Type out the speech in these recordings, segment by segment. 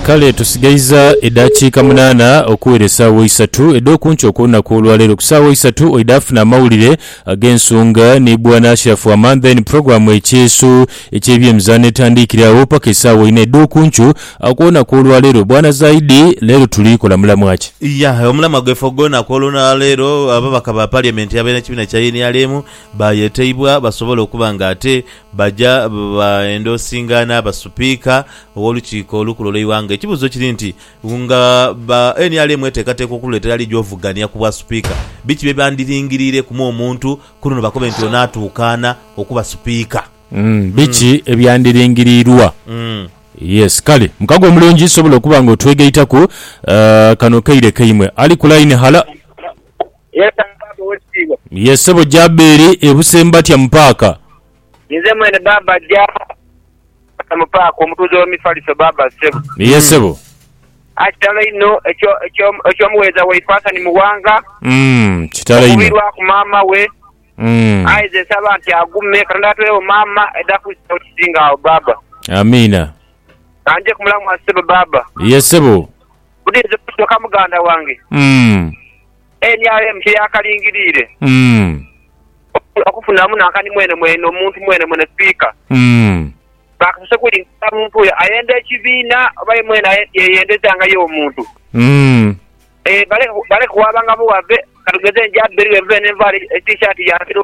Kale tusigaiza edhakiika munaana okuwera esaawa isatu edh'okunkyo okw'olunaku olwaleero. Ku saawa isatu oidhaafuna amawulire ag'ensonga ni Bwana Ashraf Aman then program Ekyeeso eky'ebyemizaano etandiikire agho paka esaawa inha edh'okunkyo okw'olunaku olwaleero. Bwana Zaidi leero tuli kola mulamwa ki? Yah, omulamwa gwaife ogw'olunaku olwaleero, ababaka ba parliament ab'ekibiina kya nrm bayeteibwa basobole okuba nga ate Baja baenda osinga n'aba Supiika ow'Olukiiko Olukulu olw'eighanga. Ekibuuzo kiri nti, nga ba nrm eteekateeka okululeetera ali gy'ovugania ku bwa Supiika, biki bye bandiringiriireku mu omuntu ku luno bakobe nti ono atuukaana okuba Supiika? Biki ebyandiringiriirwa? Yes. Kale, mukago omulungi sobola okuba nga otwegaitaku. Kano kaire kaimwe. Ali ku line, hala. Yes am baaba owekitiibwa. Yes sebo Jaberi ebuse mbatya mu paaka. Ninze mwene baaba Jaberi mbatya mu paaka omutuuze we mifaliso baaba sebo. Yes sebo. Aah kitalo inho ekyo ekyo muwereza waife Hassan Muwanga kitalo inho okuvirwaku maama we aye nze nsaba nti agume katonda atuwewo maama edha kuzilawo ekisinga agho baaba. Amiina. Kanje kumulamwa sebo baaba. Yes sebo. Buti nze kyoka muganda wange nrm kye yaakalingiriire okufunamu nankani mwenemwene omuntu mwenemwene sipiika baakasose kulingirira muntu oyo ayenda ekibiina oba ye mwene yeyendeza nga ye omuntu. Baleke kuwaabanga buwaabe, katugeze nja bbeere bweebubeere ne nvaala e T-shirt ya Biro.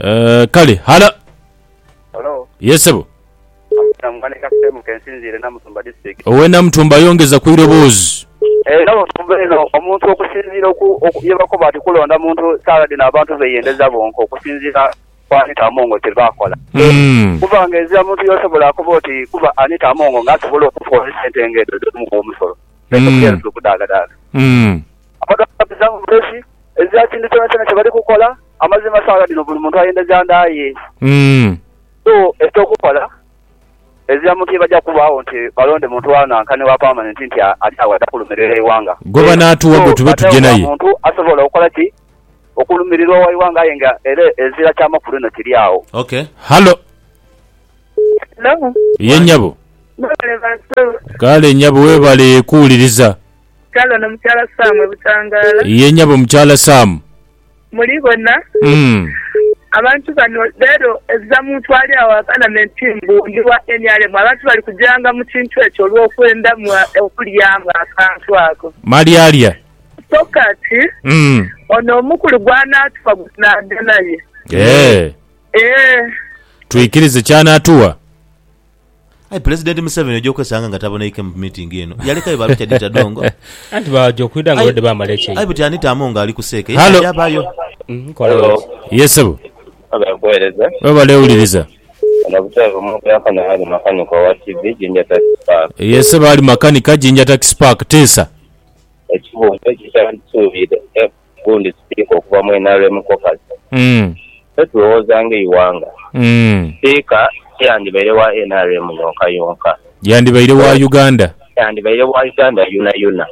Eh, kale. Halo. Halo. Yes, sebo. Amuta mugane ka sehemu kensinziire Namutumba district. Owe Namutumba yongeza ku iroboozi. Eh, Namutumba eno omuntu okusinziira oku, oku yebakoba nti kulonda muntu saala dhino abantu beyendeza bonka okusinziira ku Anita Amongo kyebakola. Mm. Kuba nga ezira muntu yosobola akoba oti kuba Anita Amongo nga asobola okufa olwesente nga edho edh'omuwi w'omusolo. Ekyo Mm. kyensi okudaagadaaga. Mm. Amadhoozi ga bizaamu bulesi, ezira kintu kyonakyona kye bali kukola. Amazima saagha dhino buli muntu ayendeza nda ye. So, eky'okukola, ezira muntu ye baja kubaagho nti balonde muntu wa nanka ni wa pamanenti nti ali agho aja kulumiririra eighanga. So, badheewo gha muntu asobola okola ki? Okulumiririra owa ighanga aye nga era ezira kya makulu inho kiri agho. Halo. Ye nyabo. Kale nyabo webale kuwuliriza. Mukyala ono mukyala Sam e Butangala. Ye nyabo mukyala Sam. Muli bona. Abantu bano lero ezira muntu ali agho agana me nti mbu ndi wa nrm abantu bali kujanga mu kintu ekyo olwokwenda mu okulyamu akantu ako. Malyalya. So kati ono omukulu gwanatuwa gwe tunagenda naye. Eeh. Eeh. Twikirize kyanatuwa. Aye Pulezidenti Museveni oja okwesanga nga taboneike mu miitingi eno. Yalekayo ba Richard Tadongo. Anti baja okwidha nga babadde baamala ekyeyo. Aye buti Anita Among ali ku seeka, ye Halo. tayaabayo. Nkola Hello. biki? Yes sebo. Webale kuwereza. Webale wuliriza. Ono butebe bumwogerako naye ali makanika owa TV Jinja Taxi Park. Yes sebo ali makanika Jinja Taxi Park. Teesa. Ekibuuzo kye kyandisuubire Gundi sipiika okuva mu nrm caucus, Petro Wozange Iwanga, sipiika tiyandibaire wa nrm yonka yonka. Yandibaire wa Uganda. Yandibaire wa Uganda yonayona.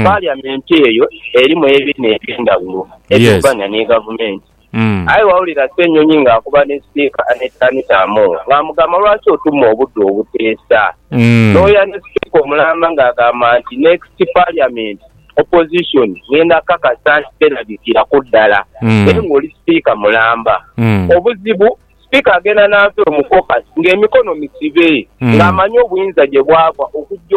Parliament eyo erimu ebiina ebyendhaghulo ebivuganya ni gavumenti. Aye waawulira Ssenyonyi ng'akuba ni sipiika Annet Anita Among ng'amugamba lwaki otuma obudde obuteesa. Nooya ni sipiika omulamba ng'agamba nti next parliament opposition ng'enda kukakasa nti terabikira ku ddala naye ng'oli sipiika mulamba. Obuzibu sipiika agenda n'ava eno mu caucus ng'emikono misibe ng'amanyi obuyinza gye bwava okujja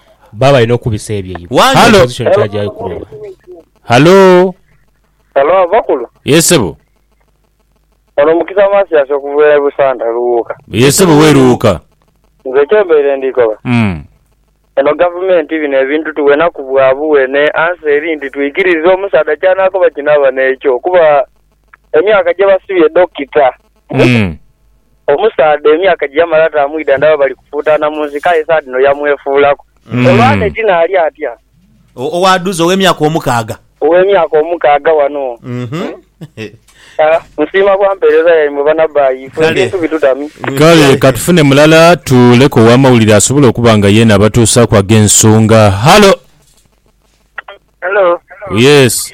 Baba balina okubisa ebyeibwe. Wandhu. Hello. Opposition twajayo kuloba. Hallo. Halo bakulu. Yes sebo. Ono Mukisa Matias okuva e Busanda Luwuuka. Yes sebo we Luwuuka. Nze kyembaire ndikoba. Umm. Eno gavumenti bino ebintu tuwenaku bwa buwene answer eri nti twikirize omusaadha kyanakoba kinaba nekyo kuba. emyaka gye basibye Dokita. Mm. Omusaadha emyaka gye yamala tamwidha ndaba bali kufuutaana mu nsiko aye saa dhino yamwefuulaku. Mm. Olwo Annet naali atya? O- Owaadhuza ow'emyaka omukaaga. Ow'emyaka omukaaga wano. Mhm. Ah, nsiima bwa mpeereza yaimwe banabbayi. Ife Kale. ebintu bitutami. Kale ka tufune mulala tuleku ow'amawulire asobola okuba nga yeena abatuusaaku ag'ensonga. Halo! Hello. Yes.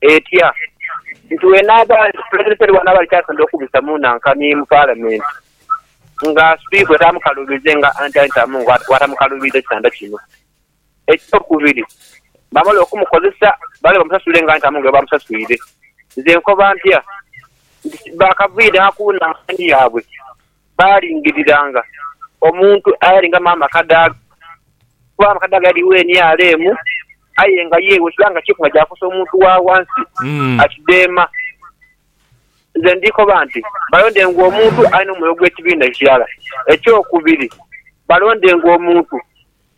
etya nti bwenaaba nti Pulezidenti ali ghano aba alikyasondha okubisa mu nankanhi mu Palamenti nga Sipiika oyo taamukaluubiridde nga Anthony Tamungu bw'atamukaluubiridde kitanda kino. Ekyokubiri, baamala okumukozesa baale bamusasule nga Anthony Tamungu bwe baamusaswire. Nze nkoba ntya nti baakavaire gha ku nankanhi yaabwe baalingiriranga omuntu ayalinga mu amakadaaga, kuba amakadaaga yaligho emyala emu, aye nga ye bwe kiba nga kyeeku nga kyakosa omuntu wa ghansi, akidheema. Nze ndi koba nti, balondenga omuntu alina omwoyo gw'ekibiina ekirala. Eky'okubiri, balondenga omuntu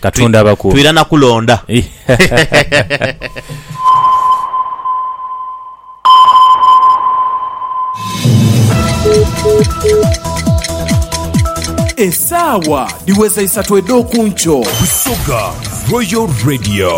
Katonda abakuume. Twirana kulonda. Esaawa dhiweza isatu edh'oku nkyo. Busoga Royal Radio.